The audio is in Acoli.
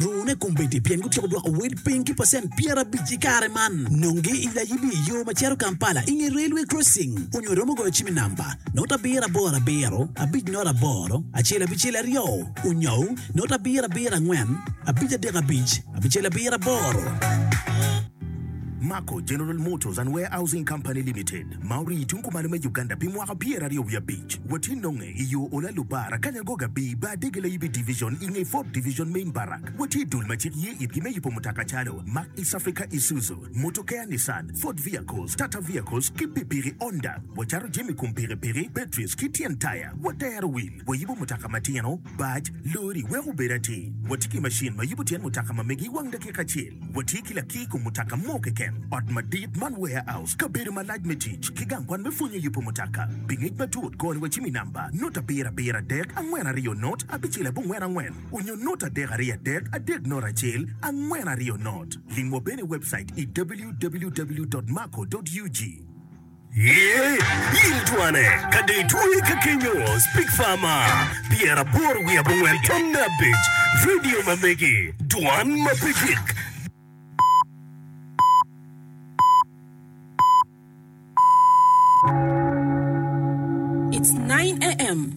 Luwune kombeddi pien gutyeko dwoko wel piny ki pacent pyerabic i kare man. Nongi i layibi i yo ma cito Kampala i nge railway crossing onyo iromo goyo cim i namba note abiro aboro abiro abic note aboro acel abicel aryo onyo note abiro abiro angwen abic adek abic abicel abiro aboro. Mako, General Motors and Warehousing Company Limited. ma orii i tung kumalo me Uganda pi mwaka pyera aryo wiye abic, watye nonge i yo ola Lubara, Kanyangoga, Bii, Bar Dege, Layibi Division, i nge Fort Division, Main Barrack. Watye i dul ma cik ye itgi me yubo mutoka calo, Mack East Africa Isuzu, Motokea Nissan, Ford Vehicles, Tata Vehicles, ki pikipiki Honda. Wacato jami kom pikipiki, batteries, ki tyen taya. Watero wil. Wayubo mutoka matino, bac, lori, weko obed atir. Watye ki macin ma yubo tyen mutoka ma megi i wang dakika acel. Watye ki lakir kom mutoka mo keken, ot madit man, warehouse, kabedo malac me tic, ki gang kwan me pwonyo yubo mutoka. Pi ngec matut, kor ni wa cim i namba, nota abiro abiro adek, angwen aryo not, abicel abongwen angwen, onyo nota adek aryo adek, adek not acel, angwen aryo not. Lim wa bene i webcait i www dot marco dot ug. Yee, in twane, ka dong itweye ka kenyo, Speak Farmer, pyeraboro wiye abongwen tam me abic, Radio ma megi, Dwan ma pe gik. It's 9 AM.